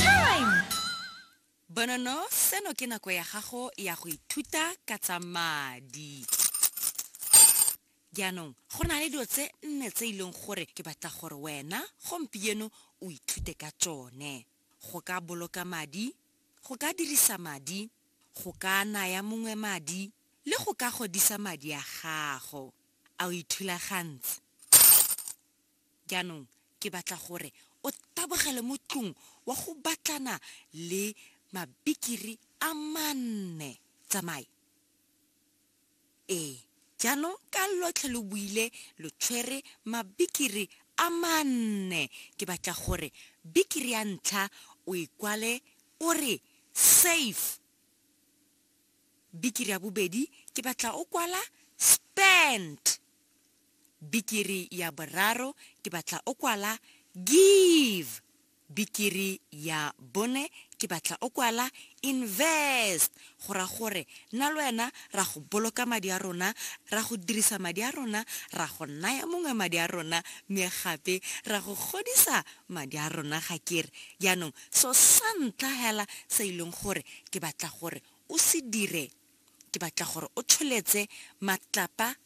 Time! Bonono, seno ke nako ya gago ya go ithuta ka tsa madi. Jaanong, go na le dilo tse nne tse e leng gore ke batla gore wena gompieno o ithute ka tsone. Go ka boloka madi, go ka dirisa madi, go ka naya mongwe madi, le go ka godisa madi a gago. A o ithulagantse? Jaanong ke batla gore o tabogele mo tlung wa go batlana le mabikiri a manne. Tsamae. Ee, jaanong ka lotlhe lo buile lo tshwere mabikiri a manne, ke batla gore bikiri ya ntlha o e kwale o re, Safe. Bikiri ya bobedi ke batla o kwala, Spent. Bikiri ya boraro ke batla o kwala give. Bikiri ya bone ke batla o kwala invest, go ra gore nna le wena ra go boloka madi a rona, ra go dirisa madi a rona, ra go naya mongwe madi a rona mme gape ra go godisa madi a rona ga ke re. Jaanong so sa ntlha hela se e leng gore ke batla gore o se dire ke batla gore o tsholetse matlapa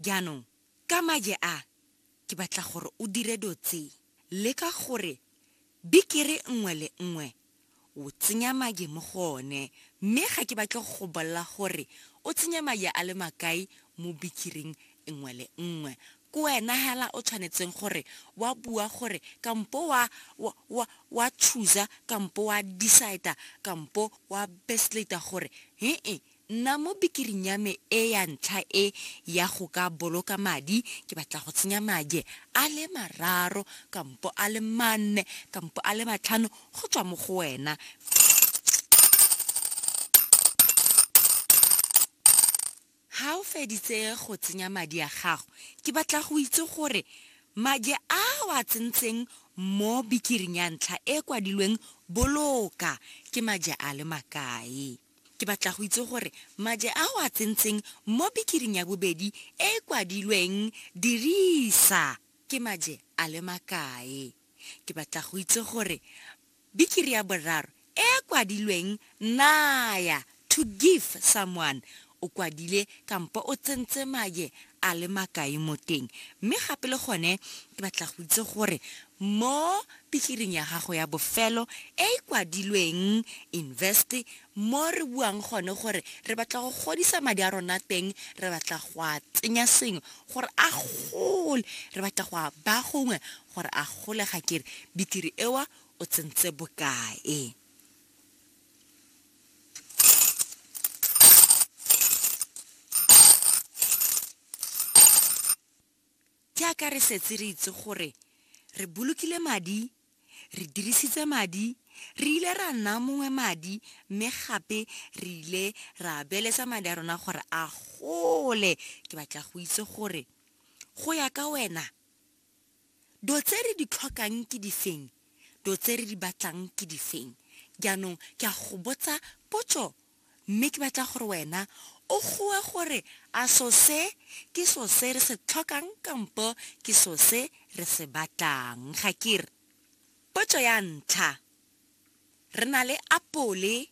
jaanong ka maje a ke batla gore o dire dilo tse le ka gore bikere nngwe le nngwe o tsenya maje mo go one mme ga ke batle go bolela gore o tsenya maje a le makae mo bikiring nngwe le nngwe Ke wena hela o tshwanetseng gore wa bua gore kampo wa wa wa wa chooser kampo wa decider kampo wa bestlater gore he-e nna mo bikiring ya me e ya ntlha e ya go ka boloka madi ke batla go tsenya madie a le mararo kampo a le manne kampo a le matlhano go tswa mo go wena. Ha o feditse go tsenya madi a gago, ke batla go itse gore madi a o a tsentseng mo bikiring ya ntlha e e kwadilweng Boloka ke madi a le makae. Ke batla go itse gore madi a o a tsentseng mo bikiring ya bobedi e e kwadilweng Dirisa ke madi a le makae. Ke batla go itse gore Bikiri ya boraro e e kwadilweng naya, to give someone, o kwadile kampo o tsentse maye a le makae mo teng. Mme gape le gone ke batla go itse gore mo bikiring ya gago ya bofelo e e kwadilweng invest, mo re buang gone gore re batla go godisa madi a rona teng, re batla go a tsenya sengwe gore a gole, re batla go a baya gongwe gore a gole ga kere bitiri ewa o tsentse bokae ke a ka re setse re itse gore re bolokile madi re dirisitse madi re ile ra nna mongwe madi mme gape re ile ra beletsa madi a rona gore a gole ke batla go itse gore go ya ka wena Do tse re di tlhokang ke difeng? Do tse re di batlang ke difeng? Jaanong ke a go botsa potso, mme ke batla gore wena o goe gore a so se ke so se re se tlhokang kampo ke so se re se batlang. Ga ke re? Potso ya ntlha, Re na le apole.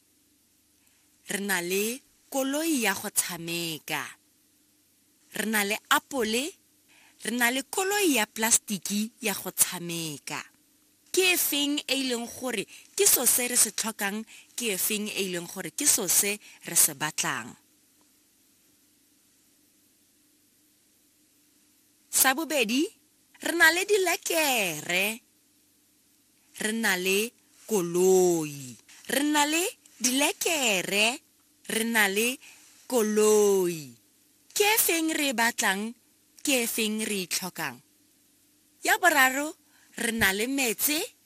Re na le koloi ya go tshameka. Re na le apole, re na le koloi ya plastiki ya go tshameka. Ke e feng e e leng gore ke so se re se tlhokang, ke e feng e e leng gore ke so se re se batlang? Sa bobedi, re na le dilekere. Re na le koloi. Re na le dilekere. Re na le koloi. Ke e feng re e batlang? Ke e feng re e tlhokang? Ya boraro, re na le metse.